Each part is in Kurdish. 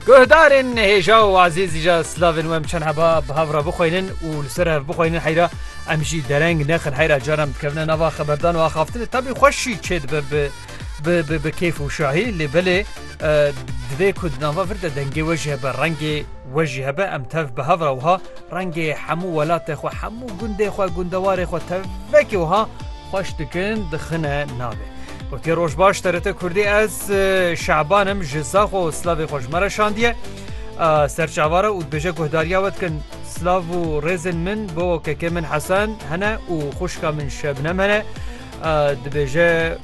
Guhdarên nehêja û azîzî ja slavên wem çend heba bi hev re bixweynin û li ser hev bixweynin heyra em jî dereng nexin heyra caran bikevine nava xeberdan û axaftinê tabî xweşî çê dibe bi bi bi kêf û şahî lê belê divê ku di nava vir de dengê we jî hebe rengê we jî hebe em tev bi hev re wiha rengê hemû welatê xwe hemû gundê xwe gundewarê xwe tevvekê wiha Xweş dikin dixine navê. Gotiye roj baş TRT Kurdî ez Şaban im ji Zaxo û Slavê xwe ji me re şandiye. Serçavara û dibêje guhdariya we dikin Slav û rêzên min bo kekê min Hesen hene û xwişka min Şebnem hene. Dibêje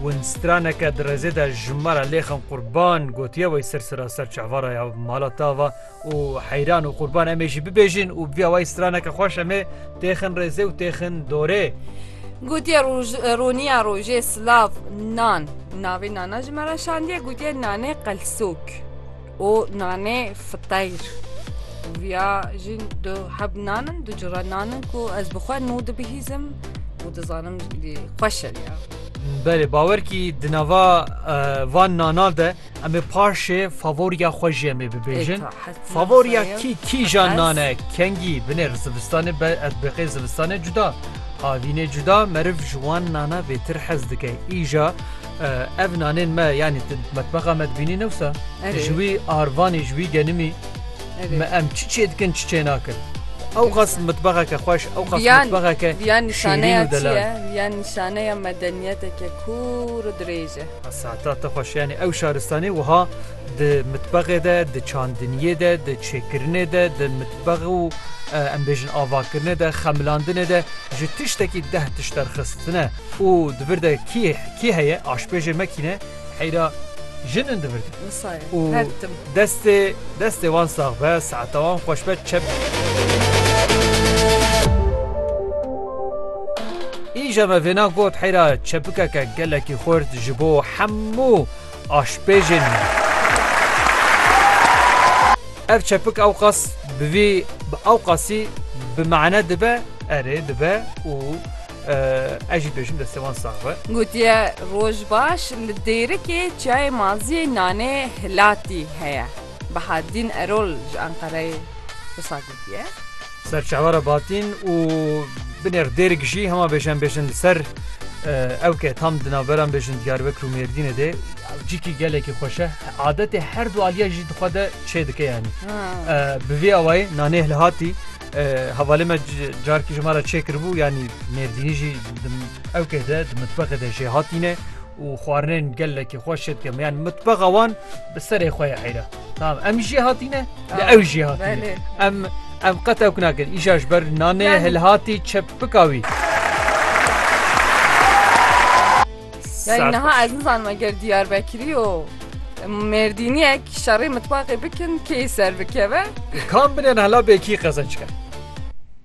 winstraneke di rêzê de ji me re lêxin qurban gotiye wey sirsira serçavara ya mala tava û heyran û qurban em ê jî bibêjin û bi vî awayî straneke xweş em ê têxin rêzê û têxin dorê. Gotiye roniya rojê silav nan navê nana ji me re şandiye gotiye nanê qelsok û nanê fiteyr viya jî du heb nanin du cure nanin ku ez bi xwe nû dibihîzim û dizanim xweş e ya. Belê bawer kî di nava van nanan de Em ê paşê favoriya xwe jî em ê bibêjin. Favoriya kî kîjan nane kengî binê re zivistanê be ev biqê zivistanê cuda. Avînê cuda meriv ji wan nana vêtir hez dike. Îja ev nanên me yanî metbexa me dibînî ne wisa ji wî arvanî ji wî genimî me em çi çê dikin çi çê nakin. Ew qas mitbexeke xweş ew qas mitbexeke şêrîn û delal. Yan nîşaneya medeniyeteke kûr û dirêj e. Sata te xweş yanî ew şaristanê wiha di mitbexê de, di çandiniyê de, di çêkirinê de, di mitbex û em bêjin avakirinê de, xemilandinê de ji tiştekî deh tişt derxistine û di vir de kî kî heye aşpêjê mekîne heyra jin in di vir de. Wisa ye. Û Her tim. Destê destê wan sax be saeta wan xweş be çep. Îja me vêna got heyra çepikeke gelekî xurt ji bo hemû aşpêjên me. Ev çepik ewqas bi vî bi ewqasî bi mane dibe erê dibe û Ez jî bêjim destê wan sax be. Gotiye roj baş li Dêrikê çiyayê maziyê nanê hilatî heye. Bahaddîn Erol ji Enqereyê wisa gotiye. Ser çavara Batîn û binêr Dêrik jî hema bêjên bêjin li ser ew ke tam di navberan bêjin Diyarbekir û Mêrdînê de cîkî gelekî xweş e. Adetê her du aliye jî di xwe de çêdike yanî. Bi vî awayî nanê hilatî Hevalê me carkî ji me re çêkiribû yanî mêrdînî jî ew kê de di mitbexê de jê hatîne û xwarinên gelekî xwe şêt ke yan mitbexa wan bi serê xwe ye heyra. Tamam em jê hatîne li ew jê hatîne em em qet ew nakin îşa ji ber nanê hilhatî çepika wî. Yani niha ez nizanma ger Diyarbekirî û Mêrdîniyek şerê mitbaxê bikin kê ser bikeve. Kam bine hela bêkî qezenc ke.